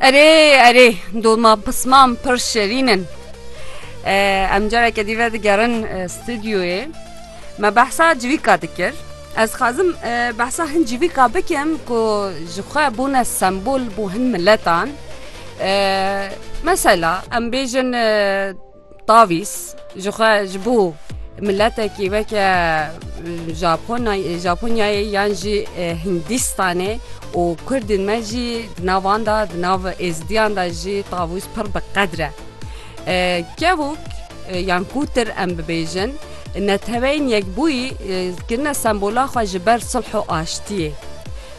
Erê erê dolma pisman pir şerîn in. Em careke dî vedigerin stûdyoyê. Me behsa civîka dikir. Ez xwazim behsa hin civîka bikim ku ji xwe bûne sembol bo hin miletan. Mesela em bêjin Tavîz ji xwe ji bo miletekî weke Japonyayê yan jî Hindîstanê û kurdên me jî di nav wan de di nav êzidiyan de jî tavûz pir bi qedr e. Kevok yan kûtir em bibêjin neteweyên yekbûyî kirine sembola xwe ji ber sulh û aştiyê.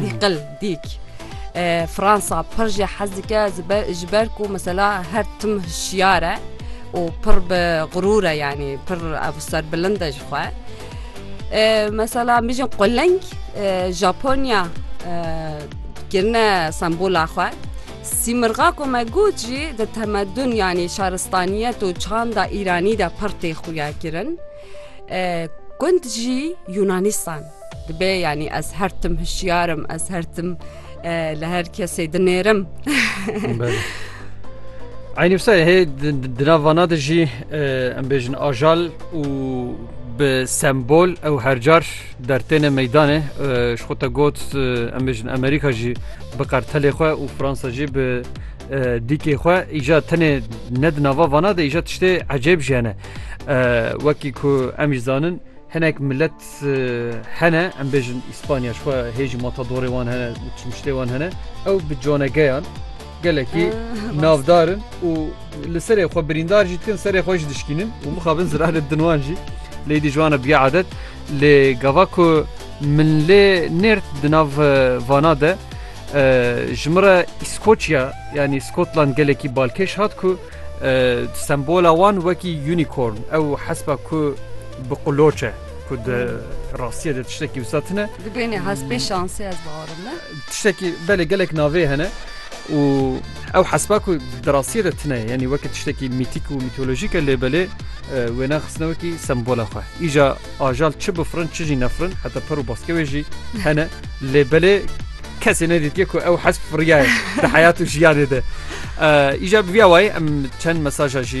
Dîqil dîk. Fransa pir jî hez dike ji ber ku mesela her tim hişyar e û pir bi xurûr e yanî pir ev serbilind e ji xwe. Mesela mijin quleng Japonya kirine sembola xwe. Sîmirxa ku me got jî di temedun yanî şaristaniyet û çanda îranî de pir tê xuya kirin. Gund jî Yunanistan. Dibe yanî ez her tim hişyar im, ez her tim li her kesê dinêrim. Aynîsa hê dinavana de jî em bêjin ajal û bi sembol ew hercar dertêne meydanê ji xwe te got em bêjin Amerîka jî bi qertelê xwe û Fransa jî bi dîkê xwe îja tenê ne di nava vana de îja tiştê ecêb jiyane wekî ku em jî zanin Hinek milet hene em bêjin Îspanya şwa hê jî matadorê wan hene û çimşlê wan hene ew bi canegeyan gelekî navdarin û li serê xwe birîndar jî dikin serê xwe jî dişkînin û mixabin zirarê din wan jî lê dî ji wan biya adet lê gava ku min lê nêrt di nav vana de ji min re Îskoçya yanî Skotland gelekî balkêş hat ku Sembola wan wekî unicorn ew hespa ku bi qloç e ku di rastiyê de tiştekî wisa tune. Dibêne hespê şansê ez biarim ne. Tiştekî belê gelek navê hene û ew hespa ku di rastiyê de tune ye yanî weke tiştekî mîtîk û mîtolojîk e lê belê wêna xistine wekî sembola xwe. Îja ajal çi bifirin çi jî nefirin heta per û baskewê jî hene lê belê Kesê nedîtiye ku ew hesp firiyaye di heyat û jiyanê de. Îja bi vîya wayî em çend mesaja jî